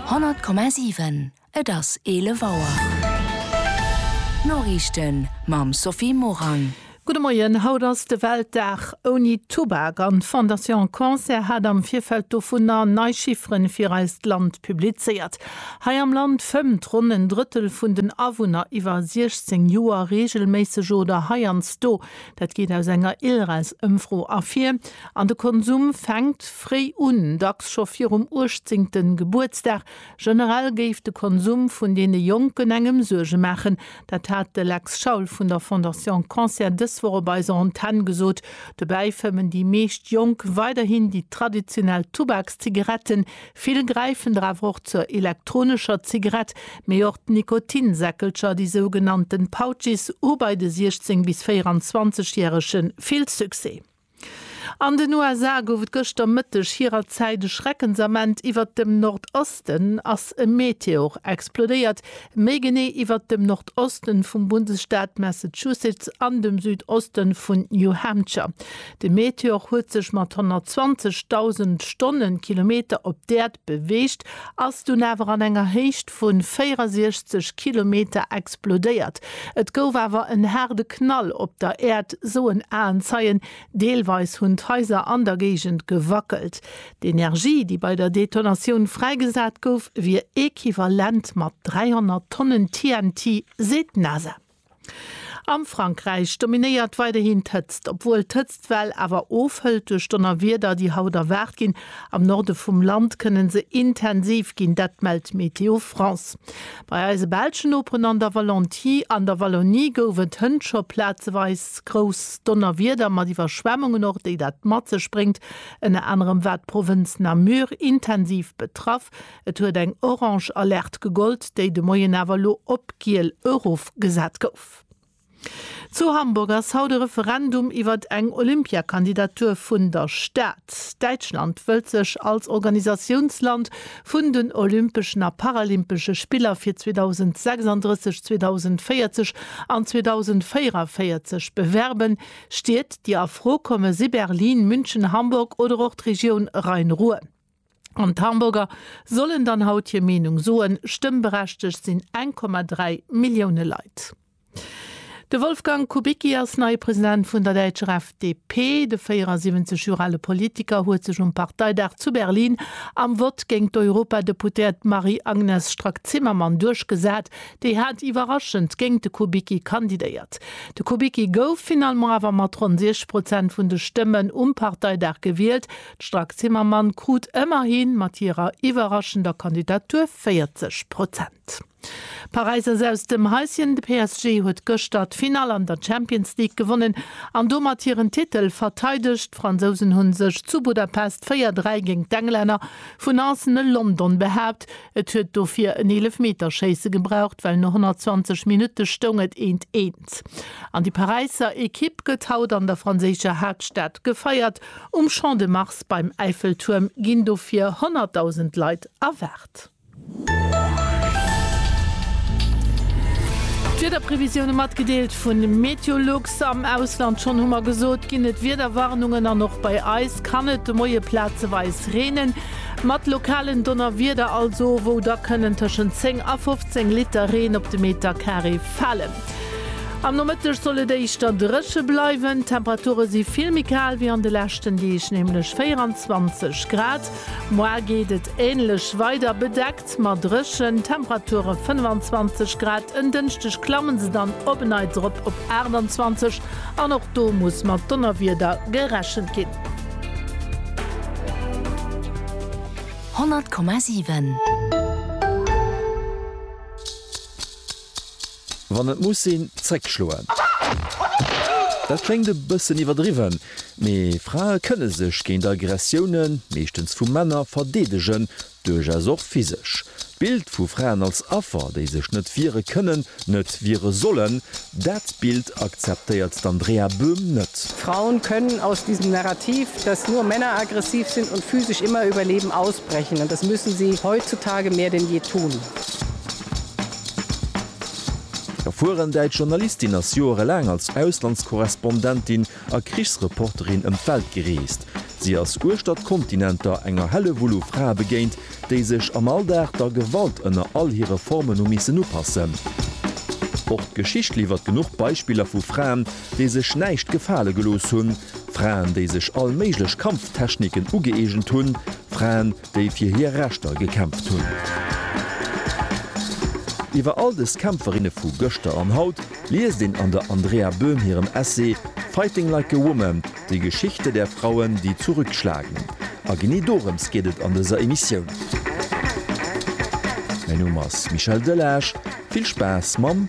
100,7 Et ass 11 Auer. D'Noriichten mam Sophie Morang. Gudde Moien, Haut ass de Weltdag ouni Tubak an d'Fondation Cancer hat am Virfeld dovunner nei Chifferen fir eist Land publizéiert. Hei am Land fëmmt ronn en Drëttel vun den Awunner iwwer 16 Joer reegelméisseg oder heiansdo Dat geet aus enger ILRES-Ëmfro ervir. An de Konsum fänkt fréi un, dacks scho virum uechtzéngte Gebuertsdag. Generell géif de Konsum vun deene Jonken engem Suerge maachen. Dat hat de Lex Schaul vun der Fondation Cancer dës Woch op eiser Antenn gesot. Dobäi fëmmen déi meescht Jonk weiderhin déi traditionell Tubaks-Zigaretten, Vill gräifen der awer och zur elektronescher Zigarett, mee och d'Nikotinsäckelcher, déi sougenannten Pouches, hu bei de 16 bis 24 Järege vill Succès. An den USA gouf et gëschter Mëtteg hirer Zäit e Schreckensament, Iwwert dem Nordosten ass e Meteor explodéiert, méi genee iwwert dem Nordosten vum Bundesstaat Massachusetts an dem Südoste vun New Hampshire. De Meteor huet sech mat 120.000 Stonnenkilometer op d'Äerd beweegt, ass dunn awer an enger Héicht vu 64 Kilometer explodéiert. Et gouf awer en haarde Knall op der Äerd, soen Aenzeien. Deelweis hunn d'Haiser an der Géigend gewackelt. D'Energie, déi bei der Detonatioun fräigesat gouf, wier equivalent mat 300 Tonnen TNT, seet d'NASA. Am Frankräich dominéiert weiderhin d'Hëtzt, obwuel d'Hëtztwell awer ofhëlt duerch Donnerwieder, déi haut erwaart ginn. Am Norde vum Land kënne se intensiv ginn, dat mellt Météo France. Bei eise belschen Noperen an der an der Wallonie gouf et hënt scho plazeweis grouss Donnerwieder mat Iwwerschwemmungen och, déi dat mat sech bréngt. Ënner anerem war d'Provënz Namur intensiv betraff, Et huet eng orange Alerte gegollt, déi de Moien awer elo op giel erofgesat gouf. Zu Hamburg ass haut e Referendum iwwert eng Olympiakandidatur vun der Stad. Däitschland wëllt sech als Organisatiounsland vun den Olympeschen a Paralympesche Spiller fir 2036, 2040 an 2044 bewerben. Stied, déi a Fro komme si Berlin, München, Hamburg oder och d'Regioun Rhein-Ruhr. An d'Hamburger sollen dann haut hir Meenung soen. Stëmmberechtegt sinn 1,3 Millioune Leit. De Wolfgang Kubicki ass neie President vun der däitscher FDP. De 74 Joer ale Politiker huet sech um Parteidag zu Berlin am Vott géint d'Europadeputéiert Marie-Agnes Strack-Zimmermann duerchgesat. Déi hat iwwerraschend géint de Kubicki kandidéiert. De Kubicki gouf finalement awer mat ronn 6 Prozent vun de Stëmmen um Parteidag gewielt. D'Strack-Zimmermann krut ëmmerhi mat hirer iwwerraschender Kandidatur 40 Prozent. Paräis ass aus dem Häischen, de PSG huet gëschter d'Finall an der Champions League gewonnen an domat hiren Titel verteidegt. D'Fransousen hu sech zu Budapest 4, 3 géint d'Englänner vu Nantes ne London behaapt. Et huet dofir en Eelefmeterschéisse gebraucht, well no 120 Minutte stoung et eent, eent. An déi Paräisser Ekipp gëtt haut an der franséischer Haaptstad gefeiert. Um Champ de Mars beim Äiffeltuerm ginn dofir 100.000 Leit erwaart. D'Wiederprevisioune matgedeelt vun Meteolux. Am Ausland, schonn hu mer gesot, ginn et Wiederwarnungen an och bei eis kann et de Moie plazeweis reenen. Mat lokalen Donnerwieder also, wou da kënnen tëschent 10 a 15 Liter Reen op de Meterkaree falen. Am Nomëtteg soll et éischter dréche bleiwen, d'Temperature si vill méi kal wéi an de leschten Deeg, nämlech 24 Grad. Moar geet et änlech weider, bedeckt, ma dréchen, Temperature 25 Grad. En Dënschdeg klamme se dann op en Neits erop op 28 an och do muss mat Donnerwieder gerechent ginn. 100,7. Wann et muss sinn, zréck schloen. Dat kléngt e bëssen iwwerdriwwen, mee Frae kënne sech géint Aggressiounen, meeschtens vu Männer, verdeedegen, duerchaus och physesch. D'Bild vu Fraen als Affer, déi sech net wiere kënnen, net wiere sollen, dat Bild akzeptéiert d'Andrea Böhm net. Frauen können aus diesem Narrativ, dass nur Männer aggressiv sind und physisch immer überleben, ausbrechen und das müssen sie heutzutage mehr denn je tun. D'erfueren däitsch Journalistin ass joerelaang als Auslandskorrespondentin a Krichsreporterin ëm d'Welt gereest. Si ass uechter d'Kontinenter enger Hellewull u Frae begéint, déi sech am Alldag der Gewalt ënner all hire Formen hu missen upassen. Och d'Geschicht liwwert genuch Beispiller vu Fraen, déi sech näischt gefale gelooss hunn, Fraen, déi sech all méiglech Kampftechniken ugëeegent hunn, Fraen, déi fir hir Rechter gekämpft hunn. Iwwer all dës Kämpferinne vu gëschter an haut liest een an der Andrea Böhm hirem Essay Fighting like a woman, Die Geschichte der Frauen, die zurückschlagen. A genee dorëms geet et an dëser Emissioun. Mäin Numm ass Michel Delage, vill Spaass mam.